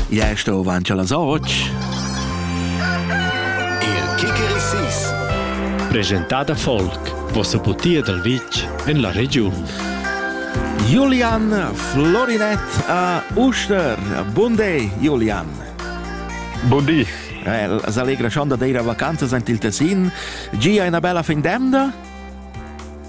Ja sto avanti alla soc. Il Kikerisis. Presentada Folk, vossa butia dal vitg en la regiun. Julian Florinett a Uster. Bun day, Julian. Bun di. Eh, la allegra schon da dire vacanzas ant il Tessin. Gia una bella fin d'emda?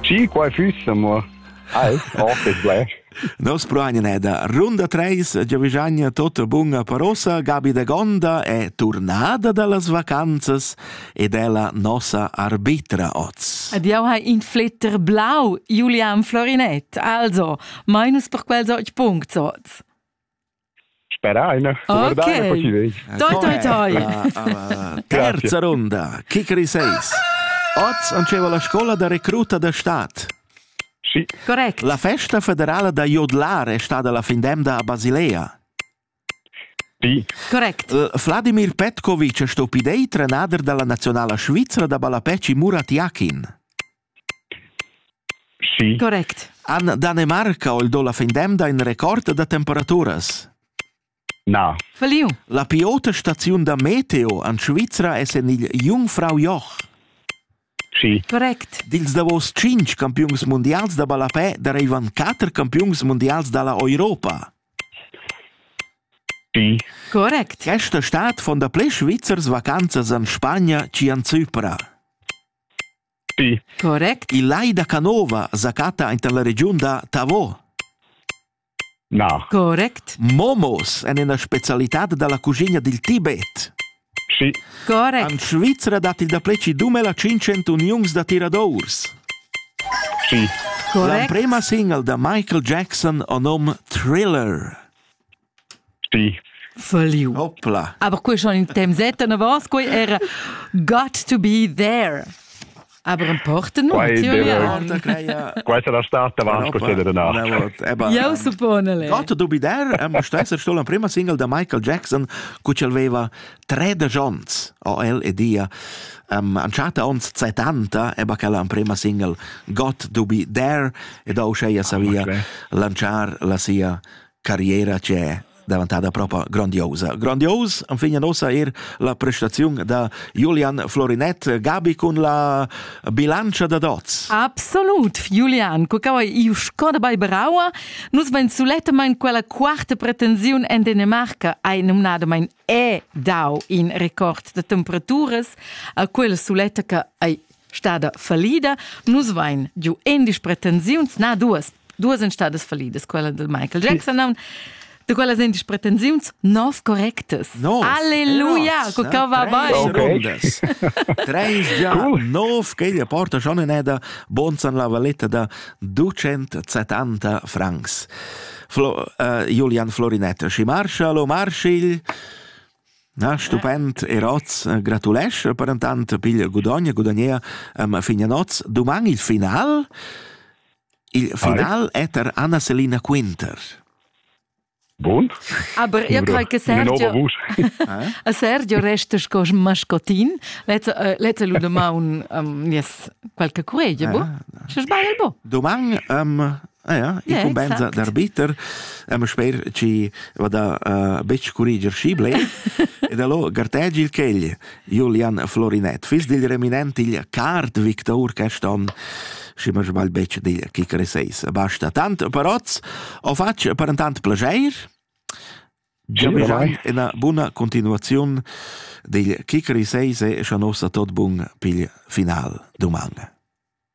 Chi quai füss, amur? Ai, oh, che sblech. Nos proainen è da Runda 3, Giovigagna tutta bunga parosa, Gabi de Gonda è turnada dallas vacanzas ed è la nossa arbitra oz. Ed jau hai in fletter blau, Julian Florinett. Also, minus per quels otg punct oz. Speraina, guardaina, poi ci vei. Toi, toi, toi. Terza ronda, Kikri 6. Oz anceva la scola da recruta da stat. Sì. Correct. La festa federala da Jodlar è stata la fin d'emda a Basilea. Sì. Correct. Vladimir Petkovic è stato idei trenader della nazionale svizzera da ballapeci Murat Yakin. Schi. Correct. Han Danemarca o il do la fin d'emda in record da temperaturas? Na. Falliu. La pi ota staziun da meteo en Svizra es en il Jungfrau Joch. Schi. Correct. Dils davos tschinch campiuns mundials da ballapè dareivan quatter campiuns mundials dalla Europa. Schi. Correct. Questa stad fon da ple Svizzers vacanzas en Spagna ci en Zypra. Correct. Il lai da Canova sa chatta ainten la regiun da Tavo. Na. Correct. Momos en ena spezialitad dalla cuschigna dil Tibet. Sì. Correct. An Svizra dat il dapleci dumela 500 uniuns da tiradours. Sì. Correct. L'amprema single da Michael Jackson o nom Thriller. Sì. Falliu. Hopla. Aber quei schon in temps et na was quei era got to be there. Aber importa no, Quai tio deve- ja. Questa è la stata avanti questa danach. Io suppone le. Got to be there è must essere stato la prima single da Michael Jackson cu c'el aveva tre da Jones o el e dia um, anchata ons 70 e bacala la prima single Got to be there e da usceia savia okay. lanciar la sia carriera che davantada propa grandiosa. Grandios enfin ossa er la prestaziun da Julian Florinet Gabi cun la bilancia da dots. Absolut, Julian, cu cau iu Scott bei Brauer, nus ben sulettamain quella quarta pretensiun en Dänemark ai numnadamain e dau in record de temperaturas a quella suletta che ai stada fallida. Nus vain giu endisch pretensiuns, na duas, duas en stadas fallidas, quella del Michael Jackson, non, de quella endisch pretensiuns nov correctes. Nov. Alleluja, cu ca va bene. Treis già nov che gli porta schon in eda bonzan la valetta da 270 francs. Flo, uh, Julian Florinetta, ci marcia lo marschigl Na, stupend er oz gratulescha per intant pigl gudogn gudogner am fin a noz. Duman il final. Il final è er Anna Selina Quinter. Bun. Aber io crei che Sergio, a Sergio resta sco mascotin. Lezza lu domaun nies qualche curegia, bo? Se sbagl, bo? Doman um, Ah ja, incumbensa d'arbiter, ama sper chi va da uh, betg curriger schi ble, ed allo gartegi il chegl, Julian Florinett, fis dil reminent il card victor caston, si ma sbagl betg dil kick reseis. Basta tant paroz, o facc per intant plageir, Giamegiai ena buna continuaziun dil kick reseis e scha nossa tot bun pigl final duman.